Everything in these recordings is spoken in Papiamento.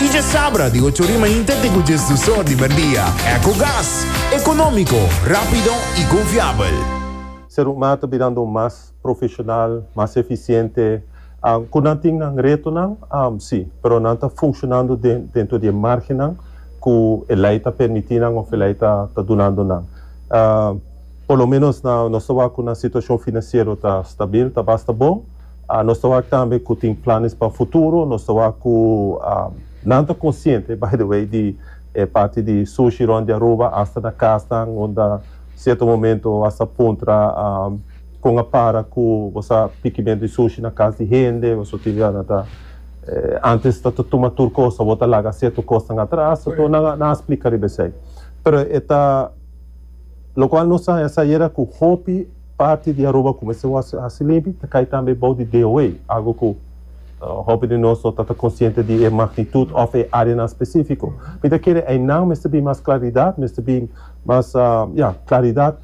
Y dje sabra di ocho rima inte te cu dje sdusor di merdia. Ecogas. Economico, rapido y confiabel. Serumma ta birando mas profesional, mas eficiente. Cu nan tin nan retonan? Si, pero nan ta funcionando dentro di e margennan cu e ley ta permiti nan of e ley ta dunando nan. Por lo menos nos ta wak cu nan situacion financiero ta stabil, ta basta bon. Nos ta wak tambe ku tin planes pa futuro. Nos ta wak ku nan ta konsiente, by the way, di e parti di sushi rònt di Aruba, asta na kasnan unda sierto momento bo a sa puntra kon a para ku bo sa pikimentu di sushi na kas di hende. Bo tin idea nan ta antes ta ta tuma tur kos, awor ta laga sierto kosnan atras. Nan a nan a splika riba esei. Pero e ta lokual nos a haña sa yera ku hopi. Parti di Aruba kumesa wòrdu hasi limpi ta kai tambe bou di DOA, algu ku hopi di nos no ta ta konsiente di e magnitut òf e áreanan spesífiko. Mi ta kere einan mester bin mas klaridat, mester bin mas, ya, klaridat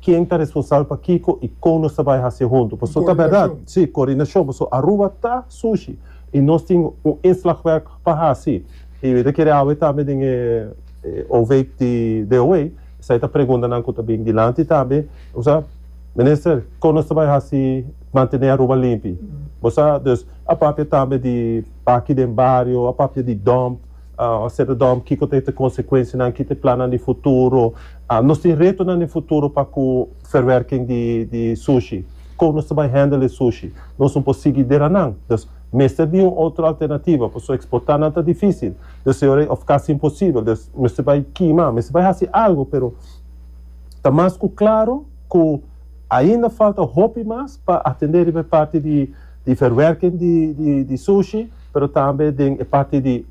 ken ta responsabel pa kiko i kon nos ta bai hasié huntu. Pasobra ta bèrdat, sí, koordinashon, pasobra Aruba ta sushi i nos tin un inslagwerk pa hasi. I mi ta kere awe tambe den e overheid di DOA. Esai ta preguntanan ku ta bin dilanti ta be, bo sa, Minister, kon nos ta bai hasi mantené Aruba limpi? Bo sa, dus a papia tambe di baki den bario, a papia di dòmp, a seta dòmp, kiko ta e ta konsekuensianan, ki ta e plannan di futuro. Nos tin retonan den futuro pa ku verwerking di di sushi. Kon nos ta bai hèndel e sushi? Nos no por sigui deranan. Mester bin un otro alternativa, pasobra exportá nan ta difícil, deseorei of casi imposibel, des mester bai kima, mester bai haci algo, pero ta mas cu claro cu ainda falta hopi mas pa atendé riba e parti di verwerking di sushi, pero tambe den e parti di.